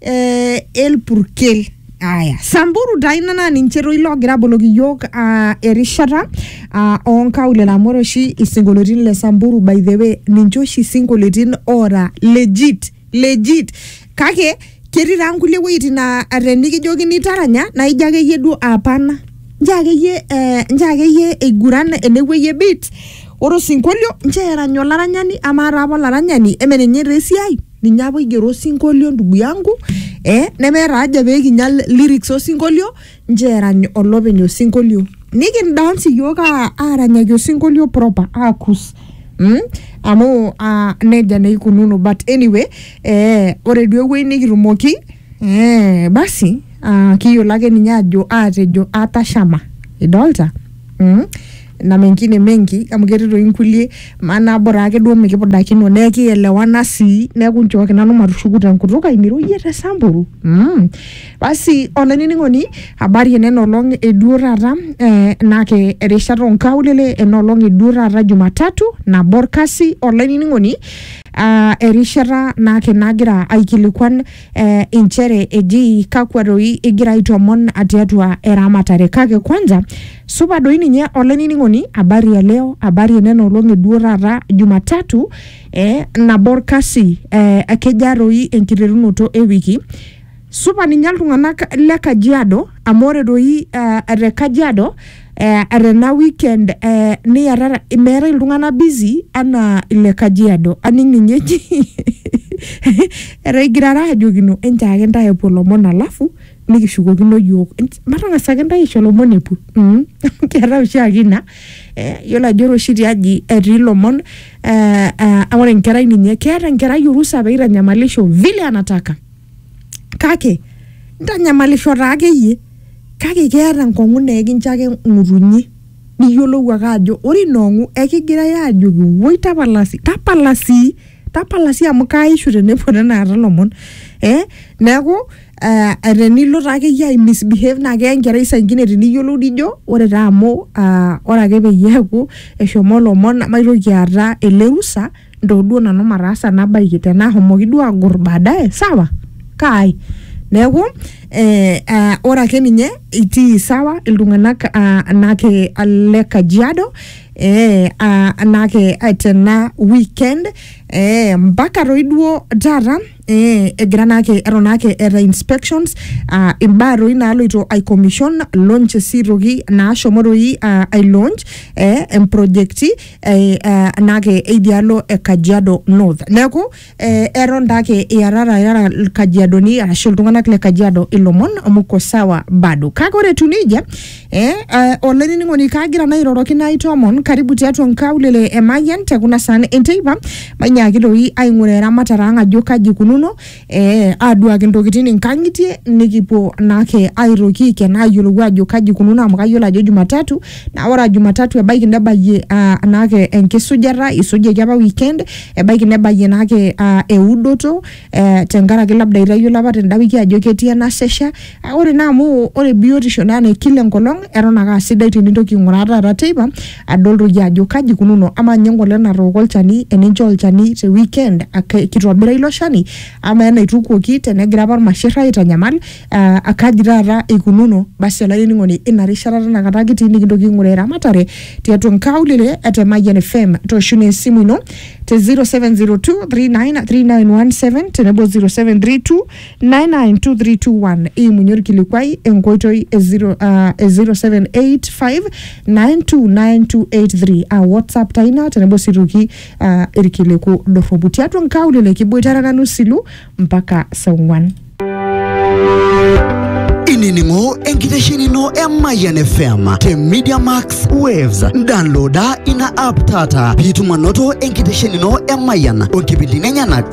eh, el purkel aya samburu daina naa ninche toi loogira aboloki iyiok ah, erishata ah, onkaulele amu ore oshi isinkolioitin le samburu by the way ninche oshi isinkolioitin oora legit legit kake ketii taa nkulie wuejitin naa tenikijokini taranya naa ijo akeyie duo apana nchoo akeyie eh, nchoo akeyie eiguran enewueji e beat ore osinkolio nchoo erany olaranyani amaa taa apa olaranyani eme ninye taa esiai ninye apa oigero osinkolio ndugu yangu eh, nemeeta haja pee kinya lyrics osinkolio nchoo erany olopeny osinkolio nikindance iyiook aa- aaranyaki osinkolio proper aakus mm? amu uh, nejia naa ikununo but anyway eh, ore duo ewueji nikitumoki Eh, basi ah, kiyiolo ake ninye ajo atejo atashama idolta mm? na mengine mengi amu ketii toi nkulie maana bora ake duo mikipudakino nee kielewana sii neeku nchooki nanu matushuku tenkutuk ai niroyie te samburu mm. basi olainining'oni habari enena olong eduo taata eh, nake erishata onkaulele ena olong eduo taata jumatatu nabo orkasi olainining'oni Ah, erishata naake nagira aikilikuan eh, inchere eji kakwa doi igira aitomon tiatua eramatare kake kwanza supa doi ninye olainining'oni habari ya leo habari enena olong'i duo taata jumatatu eh, nabo orkasi eh, kejaa doi enkiterunoto ewiki supa ninye iltung'anak le kajiado amu ore doi eh, te kajiado eh, tena weekend eh, niarara meetae iltung'anak busy anaa ile kajiado aning ninye eji etaigirara ajokino enchaake intae epuo lomon alafu nikishukokino yiok Ench- matang'asa ake intae aisho lomon epuo mm. keetae oshiake ina eh, yiolo ajo ore oshi tiaji etii lomon eh, eh, ore enkerai ninye keeta enkerai orusa peitanyamalisho vile anataka kake ntanyamalisho taa akeyie kake keeta enkong'u naa ekincho ake ng'utunyi niyiolou ake ajo ore ina ong'u ekigirae ajoki woi tapala sii tapala sii tapala sii amu kaaishu tenepuo tenakata ilomon eh neeku eh tenilo taa akeyie ae misbehave naa keya enkerai saingine tiniyiolou nijo ore taa amu uh ore ake peyie eeku eshomo ilomon namaitoki aata ele rusa. ntoo duo nanu mataasa nabaiki tenaa ahomoki duo agor baadaye sawa kaai neeku eh, ah, ore ake ninye itii sawa iltung'anak ah, anake le kajiado eh, ah, anake ah, tena weekend eh, mpaka toi duo taata eh, egira naake eton naake eeta inspections ah, imbaa toi naaloito ai commission launch sii toki naashomo toi ah, ai launch eh, emprojekti eh, eh, naake idialo e Kajiado North. Neeku eh, eton daake iarara irara Kajiadoni arashu iltung'anak le Kajiado ilomon muko sawa bado. Kake ore etiu nejia eh, eh, olainining'oni kaagira naa airoroki naitoomon karibu tiatua nkaulele e Mayian te kuna saan enteipa mainyaaki doi aing'uraa eramatare ang ajo kaji ikununo eh, aduaki ntokitin inkang'itie nikipuo naake aitoki aiken ayiolou ajo kaji ikununo amu kayiolo ajo jumatatu naa ore aa jumatatu ebaiki nebayie ah, naake enkisujata isujaki apa weekend ebaiki nebayie naake ah, eudoto eh, tenkaraki labda itayiolo apa tenda wiki ajo ketii enasesha Ah, ore naa amu ore biotisho naa ne kila enkolong eton ake asidai tenintoki aing'uraa taata teipa adol toi iyie ajo kaji ikununo amaa ninye engolong natooko olchani eninchoo olchani te weekend ake kitobira ilo shani amaa enaitukuoki tenegira apa irmasherr aitanyamal uh akaji taata ikununo basi olainining'oni ina rishata tinakata kitii nikintoki aing'uraa eramatare tiatua inkaulele e te Mayian FM toosho naa esimu ino te 0702393917 tenebo 0732 992321 imunye orkilikuai enkoitoi e zero, uh, e 0785929283 a whatsapp taa ina tenebo sii toki uh, irkiliku dorropu tiatua nkaulele kiboitare nanu silu mpaka saa ong'uan inining'o enkitesheni ino e Mayian FM te Media Max Waves. Downloada ina app taata piitum anoto enkitesheni ino e Mayian o nkipindini enyenak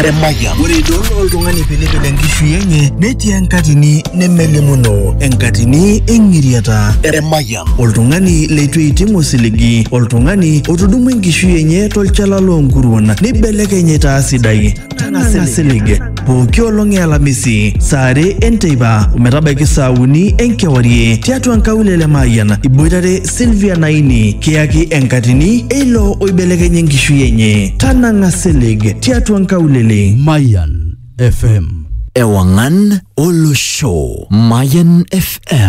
Emayian. Ore idol oltung'ani pilipil enkishui enye netii enkatini nemelimuno enkatini eng'iriata. Emayian. Oltung'ani leitu eiting osiligi, oltung'ani otudumua enkishui enye tolchala loonkuruon neibelekeny aitaa sidai. Tang'asa isilig. pooki olong e alamisi saa are enteipa ometabaiki saa uni enkewarie tiatua nkaulele Mayian iboitare Sylvia Naini kiyaki enkatini eilo oibelekenye enkishui enye tanang'a silig tiatua nkaulele Mayan FM. Ewangan Olosho. Mayan FM.